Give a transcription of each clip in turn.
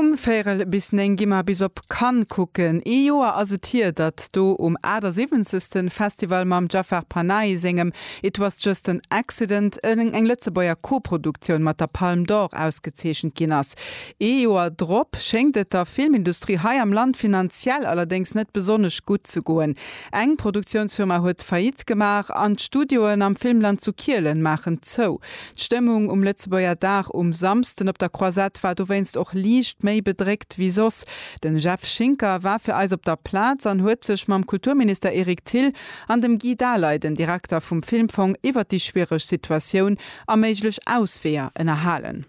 Um véirel bis néng gi mer bis op Cannes kucken. Ee Joer ass et hier, datt do um 78. Festival mam Jafar Panahi sengem It was just an accident eng Lëtzebuerger Koproduktioun mat der Palme d'Or ausgezeechent ginn ass. Ee Joer drop schéngt et der Filmindustrie hei am Land finanziell allerdéngs net besonnesch gutt ze goen. Eng Produktiounsfirma huet Faillite gemaach an d'Studioen am Filmland zu Kielen maachen zou. D'Stëmmung um Lëtzebuerger Dag um Samsden op der Croisette war dowéinst och liicht méi bedréckt wéi soss. Den Jeff Schinker war fir eis op der Plaz an huet sech mam Kulturminister Eric Thill an dem Guy Daley, den Direkter vum Filmfong, iwwert déi schwiereg Situatioun a méiglech Ausweeër ënnerhalen.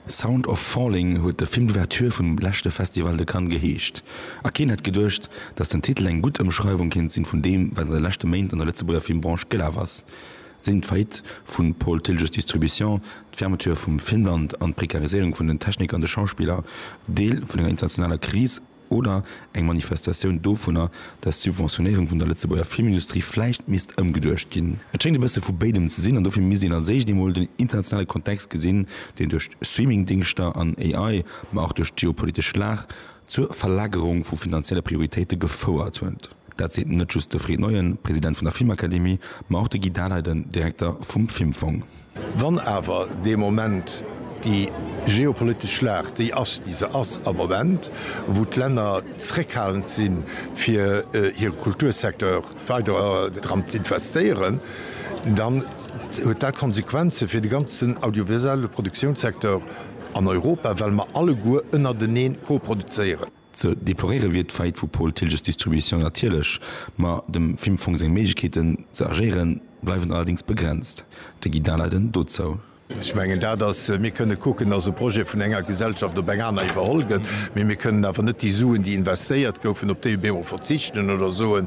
The Sound of Falling huet de Film d'Ouverture vum leschte Festival de Cannes geheescht. A keen hätt geduecht, datt den Titel eng gutt Ëmschreiwung kéint sinn vun deem, wat an de leschte Méint an der Lëtzebuerger Filmbranche gelaf ass, sinn d'Faillite vu Paul Tilges Distribution, d'Fermeture vum Filmland an d'Prekariséierung vun den Techniker an de Schauspiller Deel vun enger internationaler Kris? Oder eng Manifestatioun dovunner, datt d'Subventionéierung vun der Lëtzebuerger Filmindustrie vläicht misst ëmgeduecht ginn. Et schéngt e bësse vu béidem ze sinn an dofir misst een als éischt eemol den internationale Kontext gesinn, deen duerch Streamingdingschter an AI, ma och duerch d'geopolitesch Lag zur Verlagerung vu finanzielle Prioritéite gefouert huet. Dat seet net just de Fred Neuen, President vun der Filmakademie, ma och de Guy Daleiden, Direkter vum Filmfong. Wann awer dee Moment, déi geopolitesch Lag, déi ass, déi se ass am Moment, wou d'Länner zréckhalend si fir hire Kultursecteur weider dran z'investéieren, dann huet dat Konsequenze fir de ganzen audiovisuelle Produktiounssecteur an Europa, well mer alleguer ënnerteneen koproduzéieren. Ze deploréiere wier d'Faillite vu Paul Thilges Distribution natierlech, ma dem Filmfong seng Méiglechkeeten ze agéieren, bleiwen allerdéngs begrenzt. De Guy Daleiden dozou. Ech mengen dat ass, mir kënne kucken, dass e Projet vun enger Gesellschaft op eng aner iwwerholl gëtt, mee mir kënnen awer net déi Suen, déi investéiert goufen, op déi emol verzichten oder soen,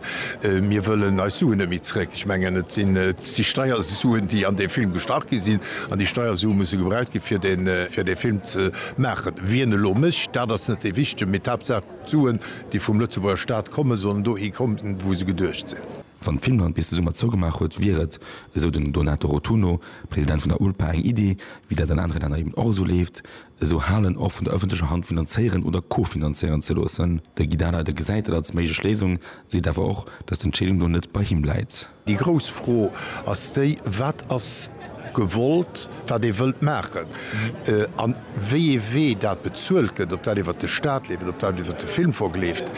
mir wëllen eis Suen net méi zréck. Ech mengen, et sinn si Steiersuen, déi an dee Film gestach gi sinn, an déi Steiersue musse gebraucht gi fir dee Film ze Maachen. Wien elo mécht, dat ass net dee Wichtegen, mee d'Haaptsaach d'Suen, déi vum Lëtzebuerger Staat kommen, sollen dohi kommen, wou se geduecht sinn. Wann Finnland bis de Summer zougemaach huet, wier et, esou den Donato Rotunno, President vun der ULPA, eng Iddi, wéi dat an anere Länner eben och esou leeft, esou Halen och vun der ëffentlecher Hand finanzéieren oder co-finanzéieren ze loossen. De Guy Dahler, dee gesäit dat als méiglech Léisung, seet awer och, datt d'Entscheedung do net bei him läit. Déi grouss Fro ass déi, Wat ass gewollt, wat ee wëllt maachen a wéi ee Wee dat bezuelt gëtt, ob dat iwwert de Staat leeft, ob dat iwwert de Filmfong leeft?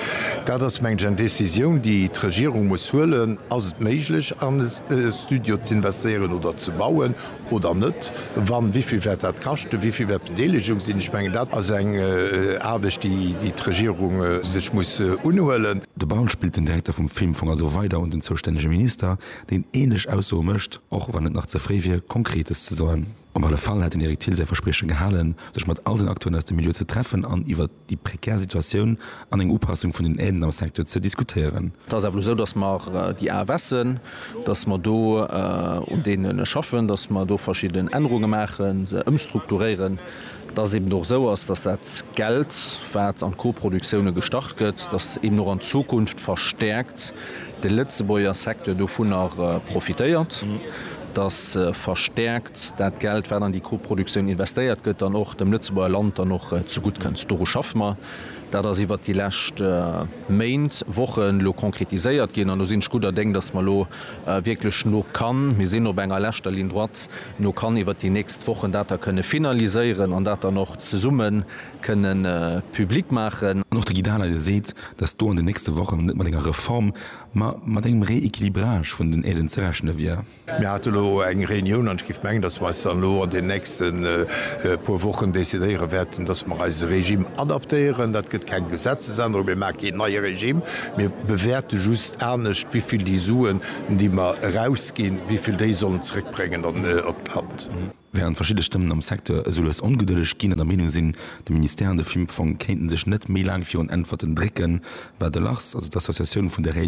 Dat ass, mengen ech, eng Décisioun, déi d'Regierung muss huelen. Ass et méiglech, an e Studio z'investéieren oder ze bauen? oder net, wann, wéi vill wäert dat kaschten, wéi vill wäert d'Bedeelegung sinn? Ech mengen, dat ass eng Aarbecht, déi d'Regierung sech muss unhuelen. De Baul spillt den Direkter vum Filmfong also weider un den zoustännege Minister, deen änlech Aussoe mécht, och wann et nach ze fréi wier, Konkretes ze soen. Op alle Fall hätt den Eric Thill säi Versprieche gehalen, sech mat all den Acteuren aus dem Milieu ze treffen an iwwer. déi prekär Situatioun an eng Upassung vun den Aiden am Secteur ze diskutéieren. Et ass awer elo esou, datt mer déi AFSen, datt mer do un deene schaffen, datt mer do verschidden Ännerunge maachen, se ëmstrukturéieren, datt et eben och esou ass, datt dat Geld, wat an d'Coproductioune gestach gëtt, datt eben och an Zukunft verstäerkt de Lëtzebuerger Secteur dovunner profitéiert. dass verstärkt dat Geld, wat an déi Koproduktioun investéiert gëtt, dann och dem Lëtzebuerger Land dann och zegutt kënnt. Doru schaffe mer. Dat ass iwwert déi lescht Méint, Wochen elo konkretiséiert ginn an do sinn ech gudder Déng, dass mer elo wierklech no kann, mir sinn op enger leschter Ligne droite, no kann iwwert déi nächst Wochen dat da kënne finaliséieren an dat dann och zesumme kënnen public maachen. An och de Guy Dahler, dee seet, dass do an den nächste Wochen net mat enger Reform Ma mat engem Rééquilibrage vun den Aiden ze rechne wier. Mir hate lo eng Reunioun an ech géif mengen, datt mer eis dann elo an deenen nächste puer Wochen decidéiere wäerten, datt mer eise Regime adaptéieren. Dat gëtt keng Gesetzesännerung. Mir maache keen neie Regime. Mir bewäerte just anescht, wéi vill déi Suen, déi mer erausginn, wéi vill déi sollen zrëckbréngen op d'Land. Wärend verschidde Stëmmen am Secteur soules ongedëlleg ginn an der Meenung sinn, de Ministère an de Filmfong kéinten sech net méi laang virun Äntwerten drécken, war de Lars, also d'Associatioun vun de Réalisateure,